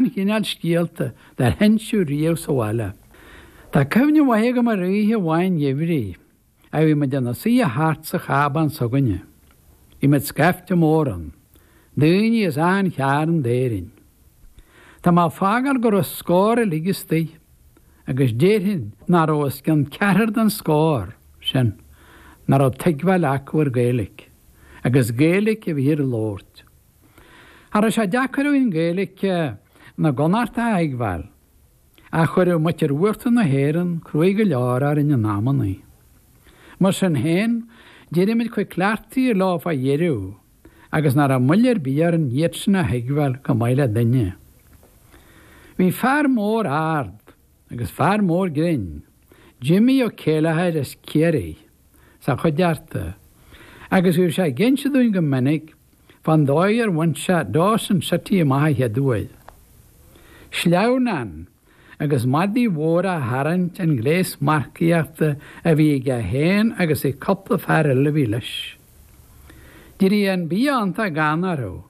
an chineál scéalta dár hinsíodh riamh sa bhaile. Tá cuimhne mhaith agam ar oíche amháin gheimhridh, a bhí muid ina suidhe thart sa chábán s'againne. Bhí muid scaifte mór ann, daoine as achan chearn d'Éirinn. Tá mé ag fágáil go raibh scór uilig istigh, agus déarfainn nach raibh os cionn ceathrar den scór sin nach raibh tuigbheáil acu ar Gaeilic, agus Gaeilic a bhíthear a labhairt. Cha raibh sé deacair againn Gaeilic na gConnacht a thuigbheáil, ach chuireadh muitir uachtar na hÉireann cruaidh go leor orainn in amannaí. Mar sin féin, d'éirigh muid chomh cleachtaithe leo fá dheireadh agus nach raibh moill ar bith orainn iad sin a thuigbheáil chomh maith le duine. Bhí fear mór ard. agus fear mór grinn, Jimmy Ó Céileachair as Ciarraí, sa chuideachta, agus bhíodh sé ag inse dúinn go minic fán dóigh ar bhain sé Dawson City amach an chéad uair. Sleamhnán agus madaí mhóra á tharraingt an gléas marcaíochta a bhí aige féin agus ag cupla fear eile a bhí leis. D'éirigh an bia iontach gann orthu.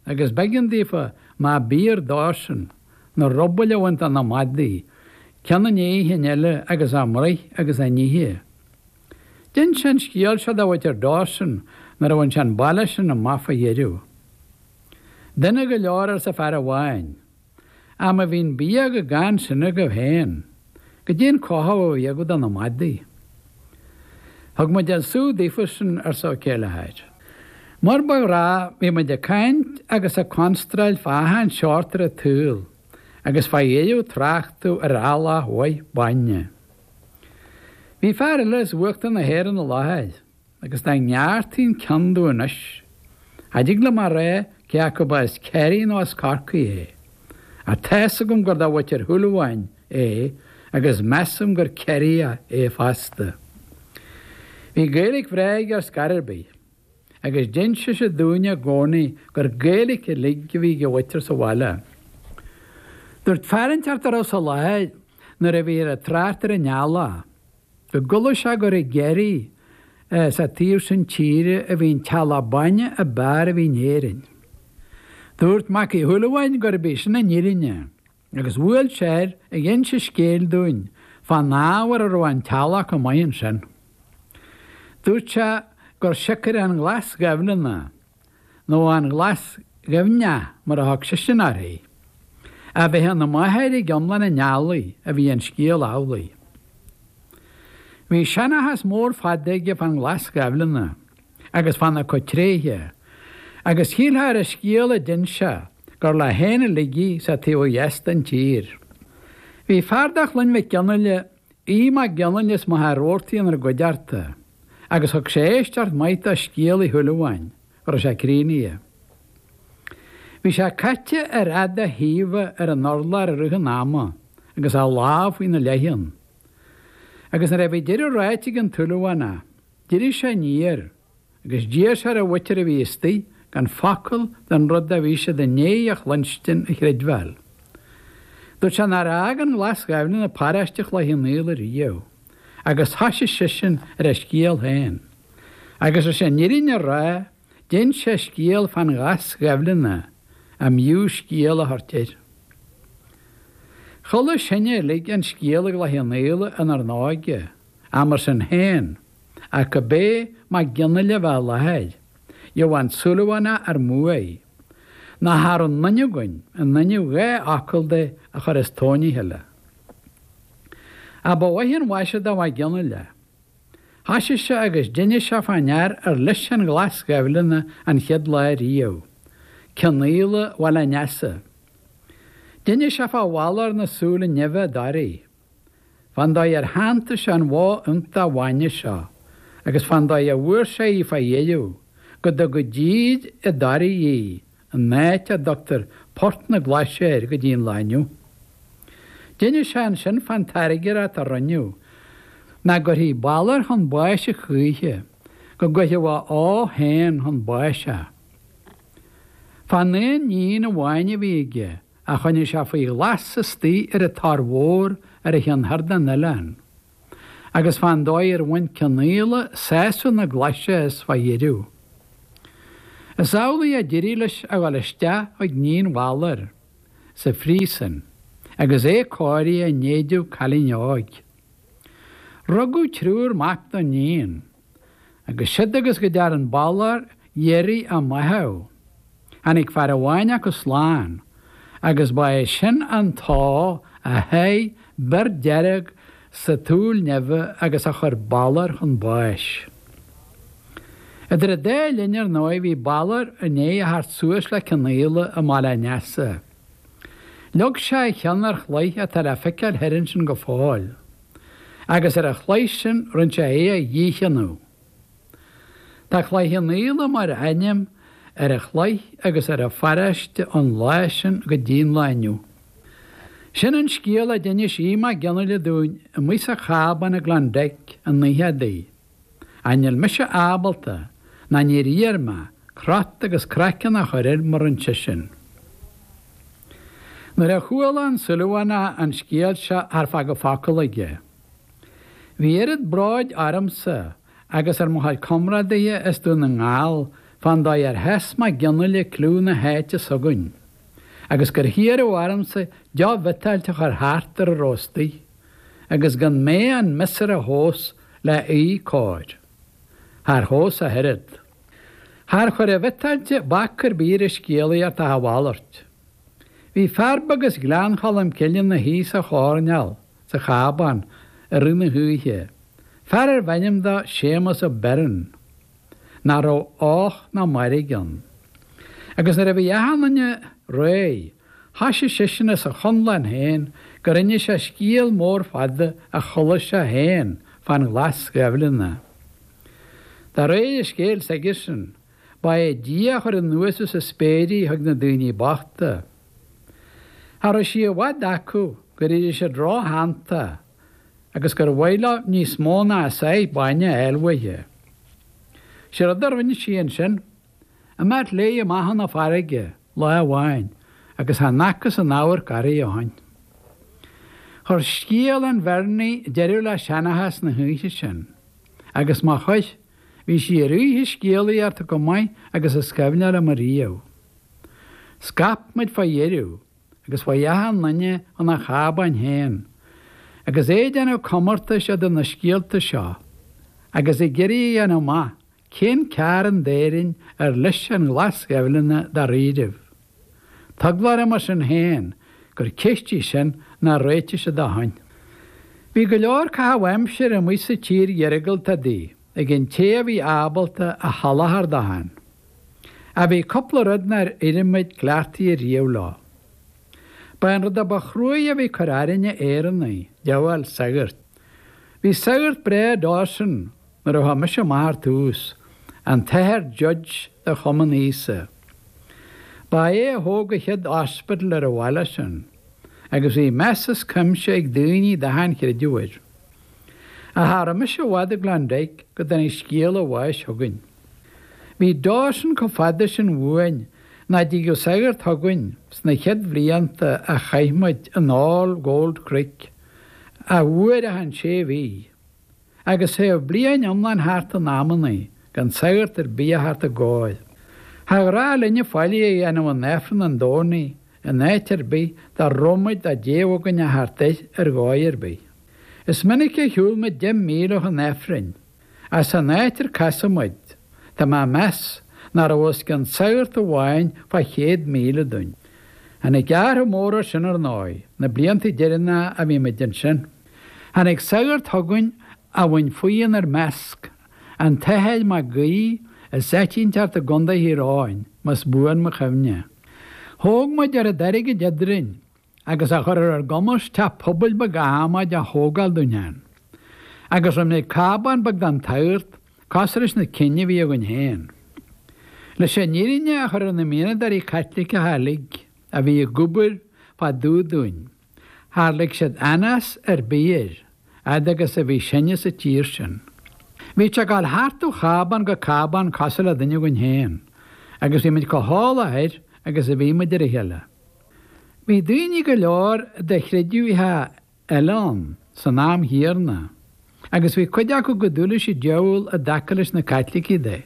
Agus b'eigean daofa, má b'fhíor dósan, na rubaill a bhaint de na madaí, ceann i ndiaidh an chinn eile agus a mbruith agus a n-ithe. D'ins sé an scéal seo do mhuitir Dawson nuair a bhain sé an baile sin amach fá dheireadh. Dona go leor, arsa fear amháin. Ach má bhí an bia chomh gann sin agaibh féin, goidé an cothú a bhí agaibh do na madaí. Thug muid an sú daofa sin, arsa Ó Céileachair. Mar ba ghnách, bhí muid ag caint agus ag constráil fá achan seort ar an tsaol agus fá dheoidh tráchtadh ar eallach mhaith bainne. Bhí fear eile as uachtar na hÉireann i láthair. agus dá ngearrtaí'n ceann domh anois, cha dtig liom a rá cé acu ba as Ciarraí nó as Corcaigh é, ach tá's agam gur do Mhuitir Shúilleabháin é agus measaim gur Ciarraíoch é fosta. Bhí Gaeilic bhreá aige ar scor ar bith, agus d'inseadh sé dúinne i gcónaí gur Gaeilic uilig a bhí ag a mhuitir sa bhaile. Dúirt fear inteacht dá raibh sa láthair nuair a bhíthear ag trácht ar an eallach, go gcualaidh sé gur i gCiarraí is an taobh sin tíre a bhí an t-eallach bainne ab fhearr a bhí in Éirinn. Dúirt Mac Uí Shúilleabháin gurb í sin an fhírinne agus bhuail sé air ag inse scéil dúinn fán ábhar a raibh an t-eallach chomh maith ansin. Dúirt sé gur siocair an Ghlas Ghaibhleanna nó an Ghlas Ghaibhneach mar a thug seisean uirthi. A bheith ina máthair ag iomlán an eallaigh a bhí an scéal amhlaidh. Bhí seanchas mór fada aige fán Ghlas Ghaibhleanna agus fána cuid tréithe agus shílfeá ar an scéal a d'inis sé gur leo féin uilig í sa taobh ó dheas den tír. Bhí fear de Chloinn Mhic Fhionnghaile, Aodh Mac Fhionnghaile as Machaire Rabhartaigh inár gcuideachta. agus thug sé éisteacht mhaith do scéal Uí Shúilleabháin, go raibh sé críochnaithe. Bhí sé caite ar fhad a thaobha ar an urlár i rith an ama agus a lámh faoina leiceann, agus nuair a bhí deireadh ráite ag an tSúilleabhánach, d'éirigh sé aniar agus d'iarr sé ar an mhuintir a bhí istigh gan focal den rud a bhí siad i ndiaidh a chluinstin a chreidbheáil. Dúirt sé nár fhág an Ghlas Ghaibhleanna paróiste Chloich Chionnaola ariamh. agus thoisigh seisean ar a scéal féin. Agus leis an fhírinne a rá, d'inis sé scéal fán Ghlas Ghaibhleanna a mb'fhiú scéal a thabhairt air. Chuala sinne uilig an scéal i gCloich Chionnaola inár n-óige, ach mar sin féin, ach go bé Mac Fhionnghaile a bheith i láthair, gheobhadh an Súilleabhánach ár mbuaidh, nó cha raibh aon duine againn, in inmhe dhá fhocal de, a chur as tóin a chéile. Ach ba mhaith an mhaise do Mhac Fhionnghaile é. Thoisigh sé agus d'inis sé fán fhear ar leis an Ghlas Ghaibhleanna an chéad lá ariamh, Cionnaola Bhaile an Easa. D'inis sé fá Bhalor na súile nimhe i dToraigh, fán dóigh ar shantaigh sé an bhó iontach bhainne seo agus fán dóigh a bhfuair sé í fá dheireadh, go dtug i dtír i dToraigh í an áit a dtugtar Port na Glaise air go dtí an lá inniu. D'inis sé ansin fán tairngreacht a rinneadh nach gcuirfí Balor chun báis a choíche, go gcuirfeadh a ó féin chun báis a. Fán aon níon amháin a bhí aige, a choinnigh sé faoi ghlas istoigh ar an Tor Mhór ar an chionn thoir den oileán. agus fán dóigh ar bhain Cionnaola sásamh na Glaise as fá dheireadh. Is amhlaidh a d'éirigh leis a dhul isteach chuig níon Bhalair sa phríosun agus é cóirithe in éideadh cailín óig. Rugadh triúr mac don níon. agus siúd agus go dtearn Balor iarraidh a mbáitheadh. Tháinig fear amháin acu slán, agus ba é sin an t-ó a sháigh bior dearg sa tsúil nimhe agus a chuir Balor chun báis. Idir an dá linn, ar ndóigh, bhí Balor i ndiaidh a theacht suas le Cionnaola i mBaile an Easa. Leag sé a cheann ar chloich atá le feiceáil thoir ansin go fóill. agus ar an chloich sin rinne sé é a dhícheannú. Tá Cloich Cheann Fhaola mar ainm ar an chloich agus ar an pharáiste ón lá sin go dtí an lá inniu. Sin an scéal a d'inis Aodh Mag Fhionnaile dúinn amuigh sa chábán i Klondike an oíche adaí. Ach níl mise ábalta, ná níor iarr mé, crot agus craiceann a chur air mar rinne seisean. Nuair a chuala an Súilleabhánach an scéal seo char fágadh focal aige. Bhí oiread bróid ormsa agus ar mo chuid comrádaithe as Dún na nGall fán dóigh ar sheas Mag Fhionnaile cliú na háite s'againn, agus gur hiarradh ormsa deoch bhiotáilte a chur thart ar a raibh istigh. agus gan mé an miosúr a thomhas leath cóir. Char thomhas ach oiread. Char chuir an bhiotáilte bac ar bith ar an scéalaíocht ach a mhalairt. Bhí fear beag as Gleann Cholm Cille ina shuí sa choirneál sa chábán i rith na hoíche, fear arbh ainm dó Séamus Ó Beirn. nach raibh och ná mairg ann. Agus nuair a bhí achan duine réidh, thoisigh seisean as a chonlán féin gur inis sé scéal mór fada a chuala sé féin fán Ghlas Ghaibhleanna. De réir an scéil s'aigesean, ba é Dia a chuir anuas as an spéir í chuig na daoine bochta. Cha raibh sí i bhfad acu gur éirigh siad róshantach, agus gur mhaith leo níos mó ná a sáith bainne a fháil uaithe. Sé rud a rinne sí ansin, imeacht léi amach chun na farraige, lá amháin, agus chan fhacthas aon amharc uirthi ó shin. Chuir scéal an Bheirnigh deireadh le seanchas na hoíche sin, agus má chuir, bhí sí ar oíche scéalaíochta chomh maith agus is cuimhin liom ariamh. Scaip muid fá dheireadh. agus chuaigh achan duine chun a chábáin féin, agus é ag déanamh comórtais idir na scéalta seo, agus ag iarraidh a dhéanamh amach cén cearn d'Éirinn ar leis an Ghlas Ghaibhleanna dáiríribh. Tá eagla orm mar sin féin gur ceist í sin nár réitigh siad ó shin. Bhí go leor caitheamh aimsire amuigh sa tír iargúlta adaí ag an té a bhí ábalta a sholáthar dó féin. Ach bhí cúpla rud nár éirigh muid cleachtaithe ariamh leo. Ba é an rud a ba chruaidhe a bhí ag cur orainne Éireannaigh, díobháil sagart. Bhí sagart breá i Dawson nuair a chuaigh mise amach ar tús, an tAthair Judge de Chumann Íosa. Ba é a thóg an chéad hospital ar an bhaile sin, agus bhí meas is cuimse ag daoine d'achan chreideamh air. Ach cha raibh mise i bhfad i Klondike go dtáinig scéala a bháis chugainn. Bhí Dawson chomh fada sin uainn nach dtigeadh sagart chugainn sna chéad bhlianta a chaith muid in All Gold Creek, ach uair achan sé mhí, agus théadh bliain iomlán thart in amannaí gan sagart ar bith a theacht dár gcóir. Char ghnách linne faillí a dhéanamh in Aifreann an Domhnaigh in áit ar bith dá raibh muid dá dtéadh againn a theacht air ar dhóigh ar bith. Is minic a shiúil muid deich míle chun Aifrinn. Ach san áit ar casadh muid, tá mé ag meas nach raibh os cionn sagart amháin fá chéad míle dúinn. Tháinig athrach mór air sin, ar ndóigh, na blianta deireanacha a bhí muid ansin. Tháinig sagart chugainn a bhain faoi inár measc, an tAthair Mac Guí as áit inteacht i gContae Thír Eoghain, más buan mo chuimhne. Thóg muid oiread airgid eadrainn agus a chur ar ár gcumas teach pobail beag adhmaid a thógáil dúinn ann. Agus rinneadh cábán beag don tsagart cosúil leis na cinn a bhí againn féin? Leis an fhírinne a chur ar na mianadóirí Caitliceacha uilig a bhí ag obair fá dtaobh dúinn, char lig siad anás ar bith air, fhad agus a bhí sinne sa tír sin. Bhíodh sé ag gabháil thart ó chábán go cábán cosúil le duine againn féin, agus bhí muid chomh heolach air agus a bhí muid ar a chéile. Bhí daoine go leor de chreideamhacha eile ann san am chéanna agus bhí cuid acu chomh dubh leis an diabhal i dtaca leis na Caitlicigh de.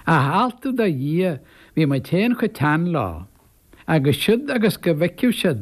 Ach altú do Dhia bhí muid féin chomh teann leo agus siúd agus go bhfeicfeadh siad